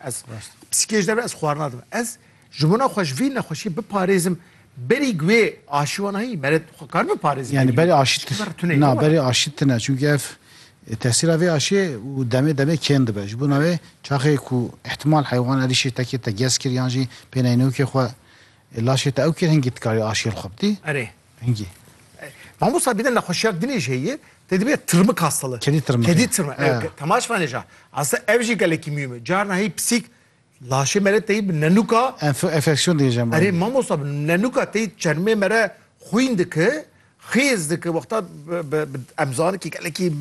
Ez psîkêjî derve ez xwarina dibim. Ez ji bona xwe ji vî nexweşî biparêzim berî guê aşî wan heyî mere xwe kar biparêzim. Yani berî aşî tune na berî aşî tune çünkü ev e, tesîra vê aşiyê û demê demê kêm dibe. Ji bona wê çaxê ku ihtimal heywan erîşê tekê te gez kir yan jî pêneyinokê xwe e, laşê te ew kir hingî dikarî aşiyê li xwe bidî. Erê. Hingî. Mamosta bîne nexweşiyak dinê jî heye, te dibîne tirmik hastalığı. Kedî tirmik. Kedî tirmik. Ew temaş vanê ja. Asa ev jî gelekî mîyûm e. Carna hey pisîk laşê mere teyî bi nenuka Enfeksiyon diyê jemma. Erê mamosta bi nenuka teyî çermê mere xwîn dike, xêz dike. Wexta em zanin kî gelekî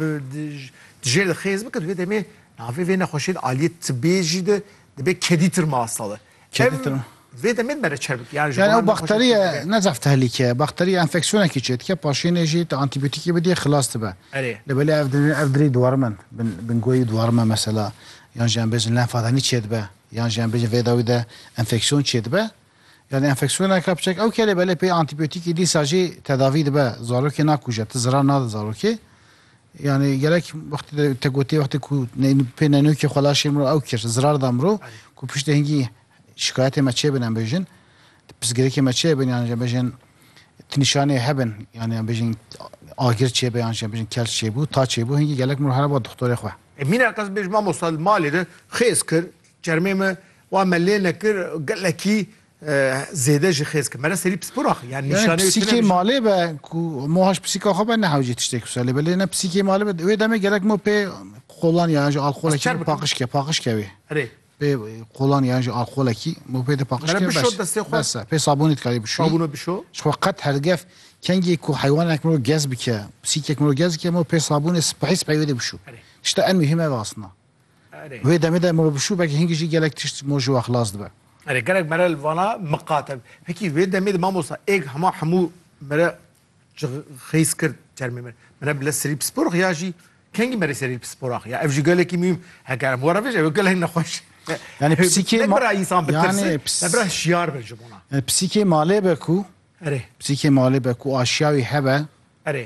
dijêr de xêz bike di vê demê navê vê nexweşiyên aliyê tibiyê jî de dibe kedî tirma hastalığı. Em vê demê dimere çer bik. Yani, yani ew bakteriye ne zaf tehlike. Bakteriye enfeksiyonekî çê dike. Paşênê jî tu antîbiyotîkê bidî xilas dibe. Erê. Li belê ev dirê ev dirê dwarime bin goyî dwarime mesela. Yan jî em bêjin lenfadanî çê dibe. Yan jî em bêjin vê dawî de enfeksiyon çê dibe. Yani enfeksiyoneke biçek ew ke lê belê pê antîbiyotîkê dîsa jî tedavî dibe. Zarokê nakuje, tu zirar nade zarokê. Yani gerek wextê de te gotê wextê ku pê nenokê xwe laşê mirov ew kir zirar da mirov ku piştê hingî şikayetê me çêbin em bêjin pirsgirêkê me çêbin yan jî bêjin tu nîşanê hebin yani em bêjin agir çêbe yan jî bêjin kel çêbû ta çêbû hingî gelek mirov hereba doktorê xwe. Mîna qez bêj mamosta li malê de xêz kir çermê me wa me lê nekir gelekî Zêde jî xêz ki mere serî pispora xwe yan nîşaneyê tu ne. Pisîkê malê be ku mo haş pisîka xwe be ne hewcê tiştê ku selê be lê ne pisîkê malê be wê demê gelek mo pê qolan yan jî alkolekî paqij ke paqij ke wê. Erê. Pê qolan yan jî alkolekî mo pê de paqij ke bes. Bes e pê sabûnê dikarî bişo. Sabûna bişo. Ji xwe qet hergef kengê ku heywanek miro gez bike pisîkek miro gez bike mo pê sabûnê sipehî sipehî wê de bişo. Tişta en muhîm ev asna. Wê demê de move bişû belkî hingî jî gelek tişt mo ji we xilas dibe. Erê gelek mere li vana miqate. Hikî wê demê de mamosta êg hema hemû mere ji xêz kir termê min. Mere bile serî pispor xiya jî kengî merê serî pispora xiya. Ev jî gelekî mîm heke em were vêj ew gelek nexweş. Yani psîkê ma bira insan bi tirsi, me bira şiyar be ji bona. Psîkê malê be ku Erê. Psîkê malê be ku aşiya wî hebe. Erê.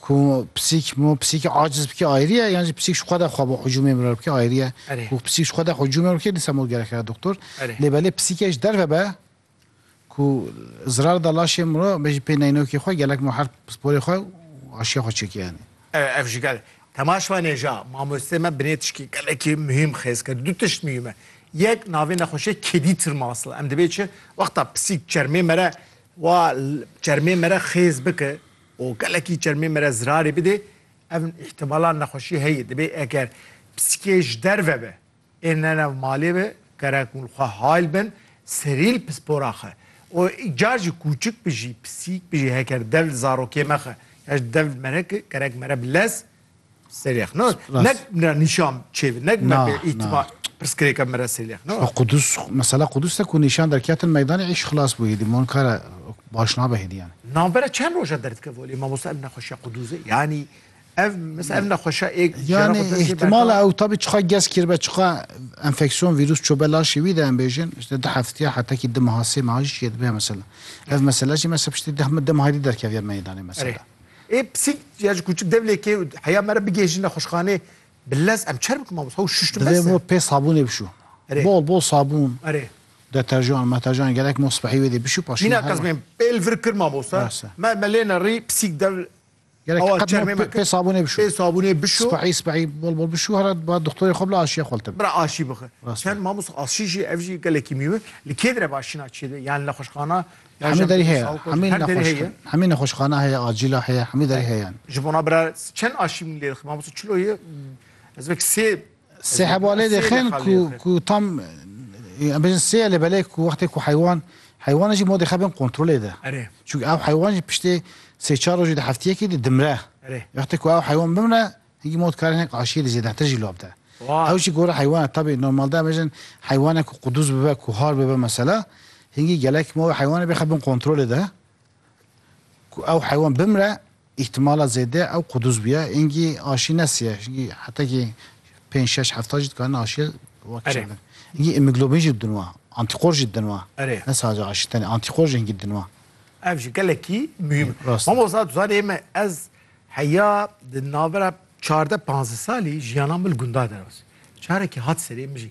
Ku pisîk mo pisîkê aciz bikê ayrî ye yan jî pisîk ji xwe de xwe bo hicûmê mirar bikê ayrî ye. Erê. Ku pisîk ji xwe de hicûmê mir bikê dîsa mo gerek re doktor. Erê. Lê belê pisîkê ji derve be ku zirar da laşê miro be jî pê neynokê xwe gelek mo her sporê xwe û aşiya xwe çêkê yanî. Erê ev jî gel. Temaş me nêja mamosteyê me binê tişkê gelekî muhîm xêz kir. Du tişt muhîm e. Yek navê nexweşê kedî tirmasl e. Em dibê çi wexta pisîk çermê mere Wa çermê me re xêz bike û gelekî çermê me re zirarê bidê, ev îhtimala nexweşî heye. Dibê eger pisîkê ji derve be ên ne nav malê be gerek hûn xwe hayl bin serîl pispora xwe û car jî kûçik bi jî pisîk bi jî heker dev li zarokê me xwe ya ji dev li me re ki gerek me re bi lez Selêx no nek mira nîşan çê bi nek me bê îtima pirsgirêka me re selêx no. Qudus mesela Qudus te ku nîşan derketin meydanê îş xilas bû hêdî mon kare baş nabe hêdî yani. Nambere çend roja derdike volê mamosta ev nexweşiya Quduzê yanî ev mesela ev nexweşa ê yani ihtimala ew tabi çiqa gez kirbe çiqa enfeksiyon vîrus çobe laşê wî de em bêjin işte di heftiya hetekî di meha sê meha jî çê dibe mesela. Ev mesela jî mesela piştî deh min deh meha derkeviya meydanê mesela. Ê pisîk ya ji kûçik dev lê kê û heya me re bigihêjin nexweşxanê bi lez em çer bikim mamosta û şuştim bes e. Divê bo pê sabûnê bişû. Erê. Bol bol sabûn. Erê. Deterjan, meterjan gelek mo sibehî wê dê bişû paşî Mîna Kazmîn pê li vir kir mamosta. Me me lê nerî pisîk dev Gelek qet mo pê sabûnê bişû. Pê sabûnê bişû. Sibehî sibehî bol bol bişû hera ba dixtorê xwe bila aşiya xwe li te bike. Bira aşî bixwe. Çend mamosta aşî jî ev jî gelekî mîwe. Li kê dire bi aşîna çêde yan nexweşxana Hemî derî heye. Hemî nexweşxane. Hemî nexweşxane heye, acîla heye, hemî derî heye yan. Ji bona bira çend aşîmî lê dixin? Mamoste çilo ye ez vek sê Sê heba lê dixin ku ku tam em bêjin sê ye lê belê ku wextê ku heywan heywana jî modê xebin kontrolê de. Erê. Çunke ew heywan jî piştê sê çar rojî di heftiyekî di dimre. Erê. Wextê ku ew heywan bimre Hingî ma dikare hinek aşiyê li zêdetir jî lav bide. Ew jî gorî heywan e. Tabî normalde em bêjin heywanek ku qudûz bibe, ku har bibe mesela, hingî gelek ma wê heywanê bixe bin kontrolê de ku ew heywan bimre îhtimala zêde ew qudûz bûye. Hingî aşî nesiye. Hingî hetekî pênc, şeş hefta jî dikarine aşiyê wek Erê. çandin. Hingî îmîglobîn jî didin wa. Antîkor jî didin wa. Erê. Ne sadece aşî tenê. Antîkor jî hingî didin wa. Ev jî gelekî muhîm e. Rast e. Mamosta tu zanî ême ez Heya di navbera çardeh panzdeh salî jiyana min li gunda derbas. Carekî hat serê min jî